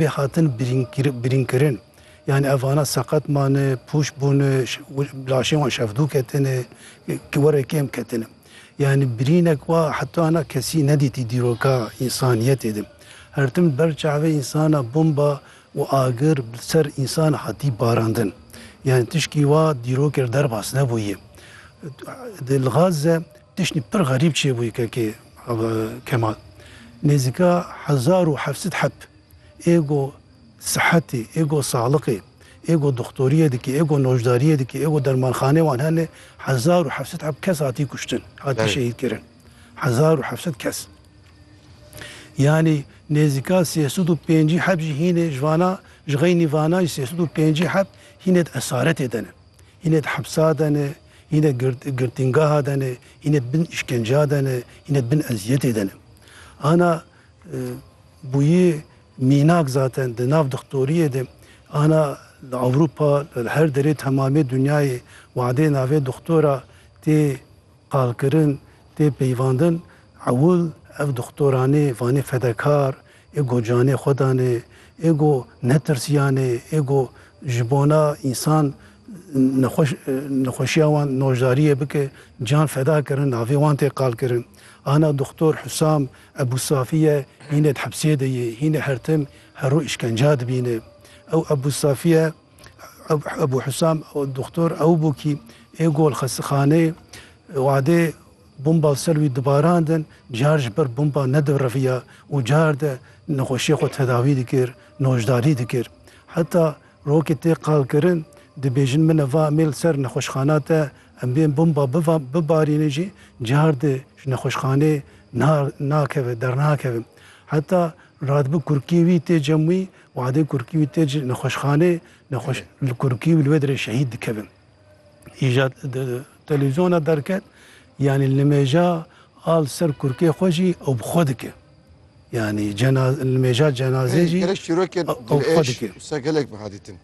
bê hatin birînkirin. Yanî ev vana seqet mane, pûç bûne, laşên wan şevdû ketine, were kêm ketine. Yanî birînek wa heta hina kesî nedîtî dîroka însaniyetê de. Her tim li ber çavê însana bomba û agir li ser însan hatî barandin. Yanî tişkî wa dîrokê li derbas nebûye. Li Gaze Tiştî pir xerîb çêbûyî kekê Ava Kemal. Nêzîka hezar û heft sed heb ê go sihetî, ê go saxliqê, ê go doxtorîyê dikê, ê go noşdarîyê dikê, ê go dermanxaneyê wan hene, hezar û heft sed heb kes hatî kuştin, hatî şehîdkirin. Hezar û heft sed kes. Yanî nêzîka sê sed û pêncî heb jî hînê ji vana, ji xeynî vana jî sê sed û pêncî heb hînê di esaretê de ne. Hînê di hepsa de ne, Hîn e girtîngeha de ne, hîn e bin îşkenceya de ne, hîn e bin eziyetê de ne. Ana bûyî mînak zaten di nav dixtoriyê de ana li Ewropa li her derê temamê dinyayê wadê navê dixtora tê qalkirin, tê peyvandin ewil ev dixtoranê vanê fedekar, Ê ku canê xwe danê, ê ku netirsiyanê, ê ku ji bona însan nexweş nexweşiya wan noşdariyê bike, can feda kirin, navê wan tê qalkirin. Ana Doktor Husam Ebû Safî ye, hînê di hepsê de ye, hînê her tim her roj îşkenca dibîne. Ew Ebû Safî ye, Ebû Husam Doktor ew bû kî ê ku li xestexaneyê wadê Bomba li ser wî dibarandin, car ji ber bomba nedivriviya û car de nexweşiyê xwe tedawî dikir, noşdarî dikir. Heta rokê tê qalkirin, dibêjin min e va em ê li ser nexweşxana te em bên bomba bibarînin jî car de ji nexweşxaneyê nakeve, dernakeve. Heta radibe kurikiyê wî tê cem wî, wadê kurikiyê wî tê nexweşxaneyê, li kurikiyê wî li wê derê şehîd dikeve. îja televîzyona derket yanî nimêja a li ser kurkê xwe jî ew bi xwe dike. Yanî nimêja cenazê jî gelek çîrokên dilêş wisa gelek biha dîtin.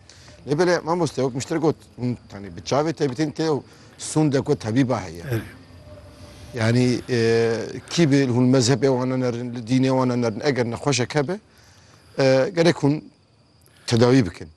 Lê belê mamoste wek min ji te got hûn tanî bi çavê te bitên tê ew sûnde ku tebîba heye. Yani e, kî bi hûn mezhebê wan nerin, li dînê wan nerin eger nexweşek hebe e, gerek hûn tedawî bikin.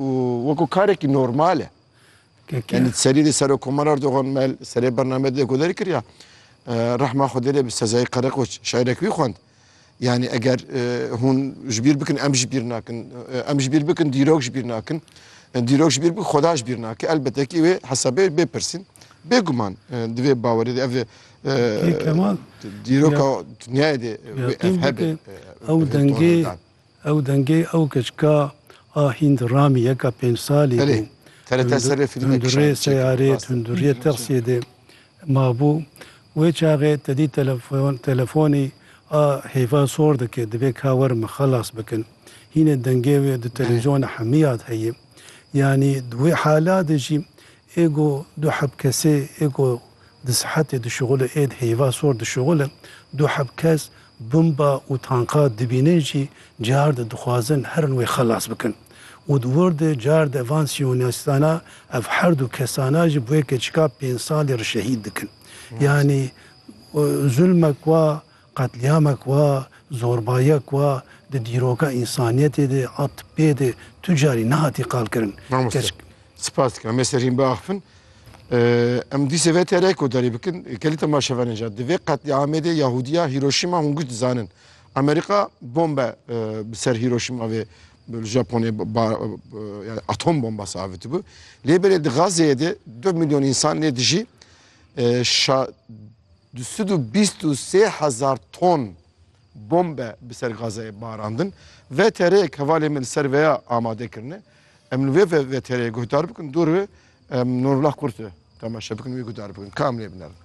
û wekû karekî normal e. Yanî di serî de Serokomar Erdogan mel serê bername de ku derkiriya rehma Xwedê lê bi sezayê Qereqoç şaîrek wî xwend. Yanî eger hûn ji bîr bikin em ji bîr nakin. Em ji bîr bikin dîrok ji bîr nakin. Dîrok ji bîr bikin Xweda ji bîr nake. Elbete kî wê hesabê bê pirsîn. Bêguman di vê bawerê de ev dîroka dinyayê de ev hebe. Ew dengê Ew dengê ew keçika a hînd Ramî yeka pênc salî bû. Tundurê seyarê, tunduriyê texsiyê de mabû. Wê çaxê tedî telefonî a hêva sor dike, divê ka werin min xelas bikin. Hînê dengê wê di televîzyona hemiya de heye. Yanî di wê hala de jî Ê ku du heb kesê ê ku di sihetê dişuxulin ên heyva sor dişuxulin, du heb kes bomba û tanka dibînin jî car di dixwazin herin wê xelas bikin û di wir de car de van siyonîstana ev her du kesana jî bi wê keçika pênc salî re şehîd dikin. Yanî zulmek wa Qetlîamek wa, zorbayiyek wa di dîroka însaniyetê de a tippê de tu carî nehatî qalkirin. Mamoste, Keşk. Sipas dikim. Em ê serîn biaxivin. Em dîsê vê TR'yê kodarî bikin. Kelîta ma şevan e ca. Di vê qetlîamê de Yahûdiya Hîroşîma hûn giş dizanin. Amerîka bombe bi ser Hîroşîma vê li Japonê yani atom bombası avitibû. Lê belê di Gazze'ye de 4 milyon insan nê dijî. Şa Du sed û bîst û sê hezar ton bombe bi ser Gazayê barandin. VTR'yek hevalên me li ser vê ya amade kirine. Em li vê VTR'yê guhdar bikin dûr be. Em Nurullah Kurtê temaşe bikin û wî guhdar bikin. Ka em lê binerin.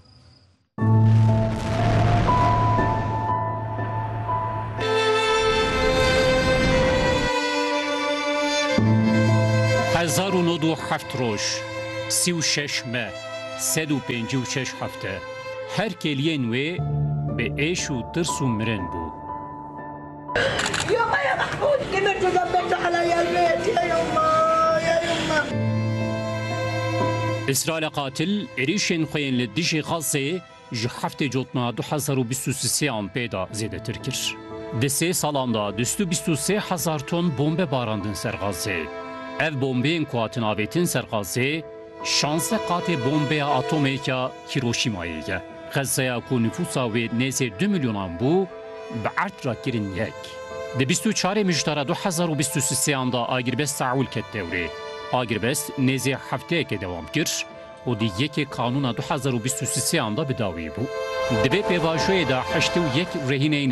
Hezar û nod û heft roj, sî û şeş me. Sed û pêncî û şeş hefte her kêliyên wê bi êş û tirs û mirin bû. Îsraîla qatil êrîşên xwe yên li dijî Xassê, Ji heftê cotna du hezar û bîst û sisê an pê de zêdetir kir. Di sê salan de du sed û bîst û sê hezar ton bombe barandin ser Xazzê. Ev bombeyên ku hatin avêtin ser Xazzê, şansdeh qatê bombeya atomêka Hîroşîmayê ye. Xezzeya ku nifûsa wê nêzê du milyonan bû, bi erd re kirin yek. Di bîst û çarê Mijtara du hezar û bîst û sisê an de agirbest Seûl ket dewrê. Agirbest nêzê hefteyekê dewam kir. û di yekê kanûna du hezar û bîst û sisê an de bi dawî bû. Di vê pêvajoyê de heştê û yek rehîneyên